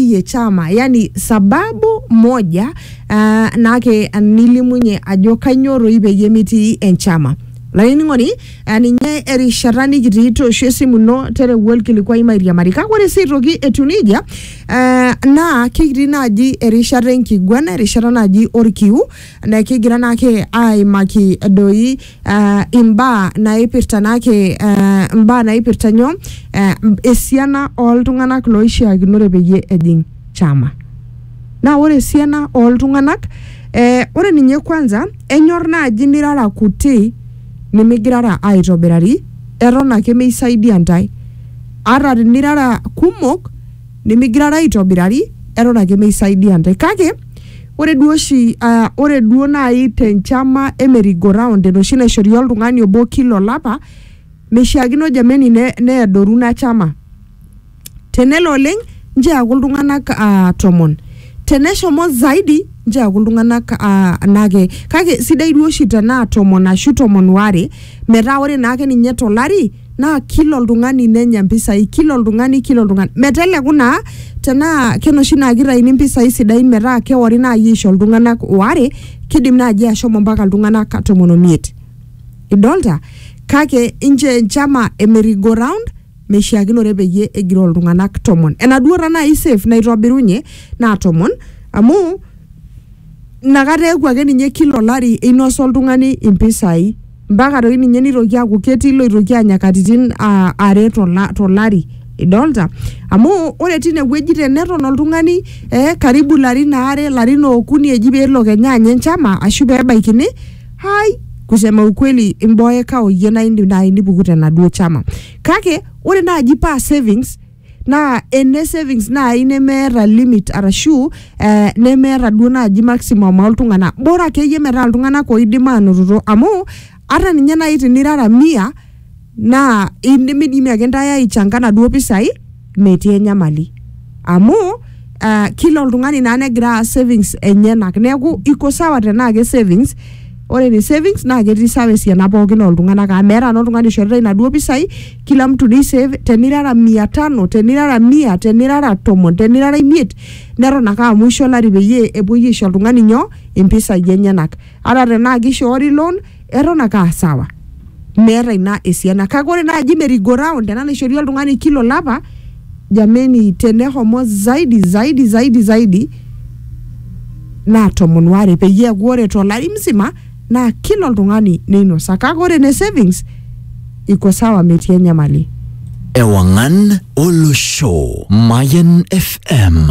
ye chama yani sababu moja uh, nake nilimunye ajo kanyoo toi peyie mitii enchama lainining'oni uh, ninye erishata nikitii toosho esimu ino tereu olkilikuai mairiamari kake ore sii aitoki etiu nejia uh, naa kikitii naaji erishata enkiguana erishata naaji orkiu na kigira naake aimaki doi uh, imbaa naipirta naake uh, imbaa naipirta nyoo uh, esiana oltung'anak loishiakinore peyie ejing chama naa ore esiana oltung'anak eh, ore ninye kwanza enyor naaji nirara kuti nimigirara aitobirari eton ake meisaidia ntae ata tinirara kumok nimigirara aitobirari eton ake meisaidia ntae kake Ore duo oshi aa ore duo nai te nchama e merry go round enoshi naishori oltung'ani obo kila olapa, mishaakino jameni ne neadoru ina chama. Tenelo oleng' nchoo eaku iltung'anak aa tomon, teneshomo zaidi nchoo eaku iltung'anak aa anake kake sidai duo oshi tenaa tomon ashu tomon waare metaa ore naake ninye to lari... naa kila oltung'ani nenya mpisai kila oltung'ani kila oltung'ani meteleku naa tenaa kenoshi naa kitaini mpisai sidain metaa kewori naaji aisho iltung'anak waare kidim naaji ashomo mpaka iltung'anak tomon omiet idolta kake inche enchama e merry go round meishiakinore peyie egiroo iltung'anak tomon enaduo tanai safe naitobirunye naa tomon amu inakata eeku ake ninye kila olari einosa oltung'ani impisai. mpaka toi ninye nitoki aaku ketii loitoki anya katitin ah, are tola- tolari idolta amu ore tine wueji teneton oltung'ani eh, karibu larin aare larin okuni eji peelo kenya anya enchama ashu pebaikini hai kusema ukweli imboeka oyie naa indim naaji nipuku tenaduo chama kake ore naaji paa savings naa ene savings naaji nemeeta limit arashu eh, nemeeta duo naaji maximum oltung'anak bora akeyie metaa iltung'anak oidim anotito amu ata ninye naaji tinirara mia naa indimidimi ake intae aichanga naduo pisai metii enyamali amu uh, kila oltung'ani naa negira aas savings enyenak neeku iko sawa tenaa ke savings ore ne savings naa ketii sawa esiana pookin oltung'anak amu meeta naa oltung'ani oishoritae inaduo pisai kila mtu ni save tenirara mia tano tenirara mia tenirara tomon tenirara imiet neton ake aa mwisho olari peyie epuoi aisho oltung'ani nyoo impisai enyenak ata tenaa kishoori loan eton ake aa sawa meeta ina esiana kake ore naaji merry go round ena naishori oltung'ani kila olapa jameni tenehomo zaidi zaidi zaidi zaidi naa tomon ware peyie eeku ore tolari msima naa kila oltung'ani neinosa kake ore ene savings iko sawa metii enyamali. Ewang'an olosho. Mayan FM.